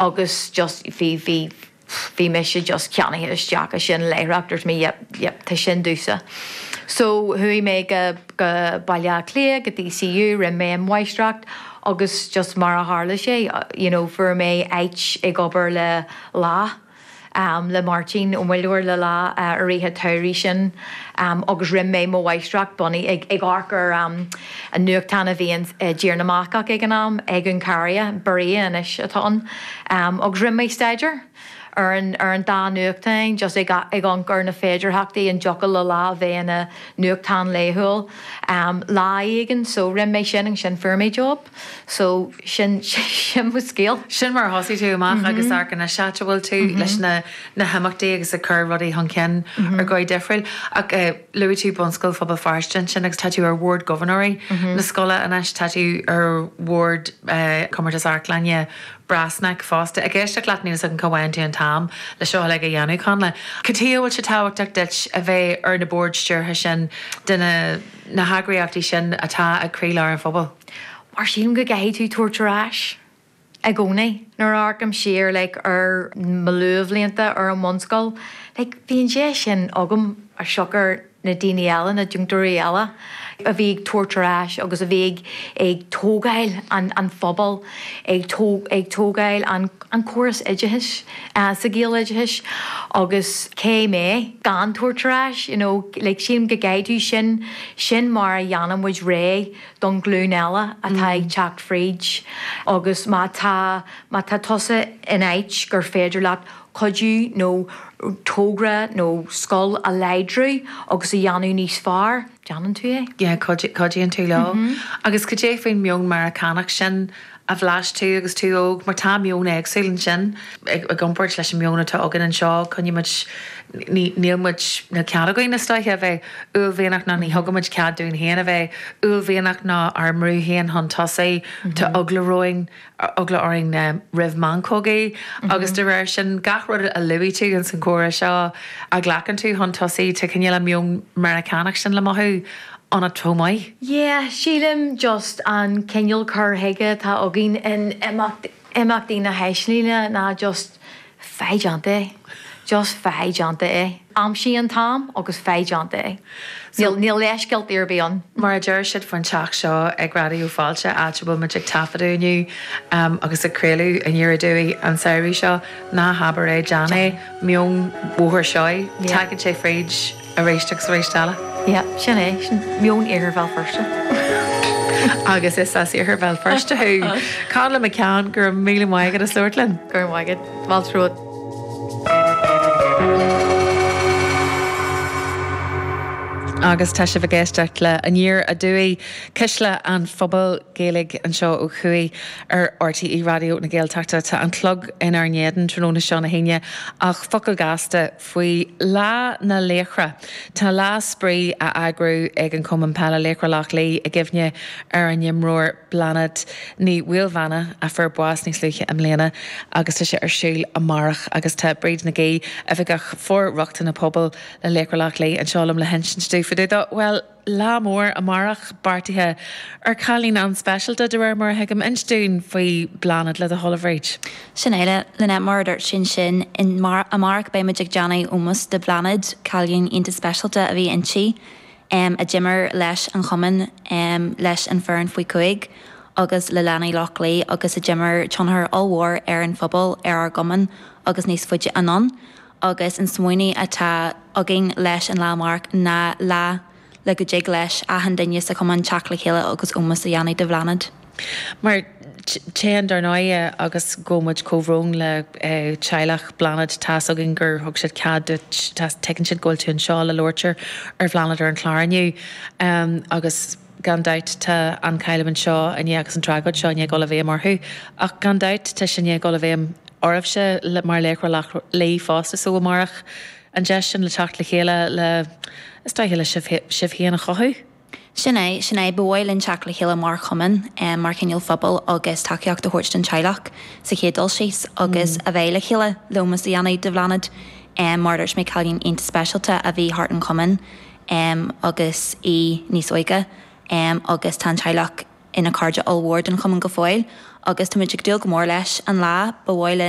agus just bhí, bhí, bhí mise just ceannaithe isteach i sin láithreach, dúirt mé yep, yep, tá sin domhsa. So chuaigh mé go, go Baile Átha Cliath, go DCU, rinne mé an mháistreacht agus just mar a tharla sé, you know, fuair mé áit ag obair le Lá. le Máirtín Ó Muilleoir le Lá i rith an tsamhraidh sin agus rinne mé mo mháistreacht bunaithe ag amharc ar an nuachtán a bhí i dTír na mBascach ag an am, Egunkaria, Berria anois atá ann, agus rinne mé staidéar ar an dá nuachtáin just ag amharc ar na féidearthachtaí an dtiocfadh le Lá a bheith ina nuachtán laethúil lá éigin so rinne mé sin agus ansin fuair mé job. So, sin, sin mo scéal. Sin mar a thosaigh tú amach agus amharc anois áit a bhfuil tú leis na na himeachtaí agus ag cur rudaí chun cinn ar dhóigh difriúil. Ach eh, luaigh tú Bunscoil Phobal Feirste ansin agus tá tú ar bhord gobharnóirí na scoile anois, tá tú ar bhord eh, Compántas Amharclainne Brassneck fosta. Ag éisteacht leat níl 'fhios agam cá bhfaigheann tú an t-am le seo uilig a dhéanamh, Connla. Cad chuige a bhfuil sé tábhachtach duit a bheith ar na boird stiúrtha sin de na. na heagraíochtaí sin atá ag croílár an phobail. Mar sílim go gcaithfidh tú tabhairt ar ais i gcónaí. Nuair a amharcaim siar like ar mo luathbhlianta ar an mbunscoil like bhí an deis sin agam as siocair na daoine eile, na deontóirí eile a bhí ag tabhairt ar ais agus a bhí ag tógáil an phobail. ag tógáil an córas oideachais sa Ghaeloideachais agus cé mé gan tabhairt ar ais you know like sílim go gcaithfidh tú sin sin mar a dhéanann muid réidh don glún eile atá ag teacht fríd agus má tá má tá tusa in áit gur féidir leat cuidiú nó togra nó scoil a láidriú agus a dhéanamh níos fearr. déanann tú é, yeah, cuidíonn tú leo. Agus cad é faoin meon Meiriceánach sin a bhlais tú agus tú óg mar tá meon éagsúil ansin i gcomparáid leis an meon atá againn anseo, coinnímid, níl muid, níl cead againn is dóiche a bheith uaillmhianach ná ní thugaimid cead dúinn féin a bheith uaillmhianach ná ár mbrú féin chun tosaigh, tá eagla orainn eagla orainn roimh mheancógaí agus de réir sin gach rud a luaigh tú ins an gcomhrá seo a ghlacann tú chun tosaigh tá cineál an meon Meiriceánach sin le mothú ionat chomh maith. Yeah, sílim just an cineál cur chuige atá againn in Imeachtaí na hAislinge ná just Faigh déanta é. Just faigh déanta é. Aimsigh an t-am agus faigh déanta é. Níl leithscéaltaí ar bith ann. Mar a deir siad faoin teach seo ag Raidió Fáilte, áit a bhfuil muid ag taifeadadh inniu agus ag craoladh Aniar Aduaidh an samhradh seo, ná habair é, déan é. Meon Bhóthar Seoighe. Tagann sé fríd. Aréist agus aréist eile. Yeah, sin é, sin meon iarthar Bhéal Feirste. Agus is as iarthar Bhéal Feirste thú. Katy McCann, go raibh míle maith agat as labhairt linn. Go raibh maith agat. Fáilte romhat. Agus tá sibh ag éisteacht le Aniar Aduaidh, Cuisle an Phobail, Gaeilge anseo ó thuaidh ar RTÉ Raidió na Gaeltachta. Tá an clog inár n-éadan tráthnóna seo na hAoine ach focal gasta Faoi Lá na Laochra, tá lá spraoi á eagrú ag an Cumann Peile Laochra Loch Lao i gcuimhne ar a n-imreoir Bláthnaid Ní Mhaoilmheana a fuair bás níos luaithe i mbliana agus tá sé ar siúl amárach agus tá Bríd Nagy, Oifigeach For-Rochtain na Pobail le Laochra Loch Lao, anseo liom le hinsint dúinn fá dtaobh dó. Bhuel. Lá mór amárach beartaithe ar chailín an-speisialta, de réir mar a thuigim, inis dúinn faoi Bláthnaid le do thoil, a Bhríd. Sin é, Lynette, mar a dúirt tú ansin, amárach beidh muid ag déanamh ómos do Bhláthnaid, cailín iontach speisialta a bhí inti, em, a d'imir leis an chumann, em, leis an foireann faoi chúig agus le leanaí Loch Lao agus a d'imir tionchar ollmhór ar an phobal, ar ár gcumann agus níos faide anonn. agus an smaoineadh atá againn leis an lá amárach ná lá le go dtig leis achan duine sa chumann teacht le chéile agus ómos a dhéanamh do Bhláthnaid. Mar Tá, dar ndóighe agus gabhaimid comhbhrón le teaghlach Bhláthnaid. Tá's againn gur thug siad cead duit, tuigeann siad go bhfuil tú anseo le labhairt ar Bhláthnaid ar an chlár inniu agus. Gan dabht tá an chailliúint seo i ndiaidh agus an tragóid seo i ndiaidh a dhul i bhfeidhm orthu. Ach gan dabht tá sé i ndiaidh a dhul i bhfeidhm oraibhse mar Laochra Loch Lao fosta so amárach an deis sin le teacht le chéile le, is dóiche, le sibh féin a chothú. Sin é, sin é. Ba mhaith linn teacht le chéile mar chumann, mar chineál phobail agus tacaíocht a thabhairt don teaghlach sa chéad dul síos agus a bheith le chéile le ómós a dhéanamh de Bhláthnaid. Mar a dúirt mé cailín iontach speisialta a bhí thart an chumann. em agus í níos óige em agus tá an teaghlach ina cairde ollmhór den chumann go fóill agus tá muid ag dúil go mór leis an lá ba mhaith linn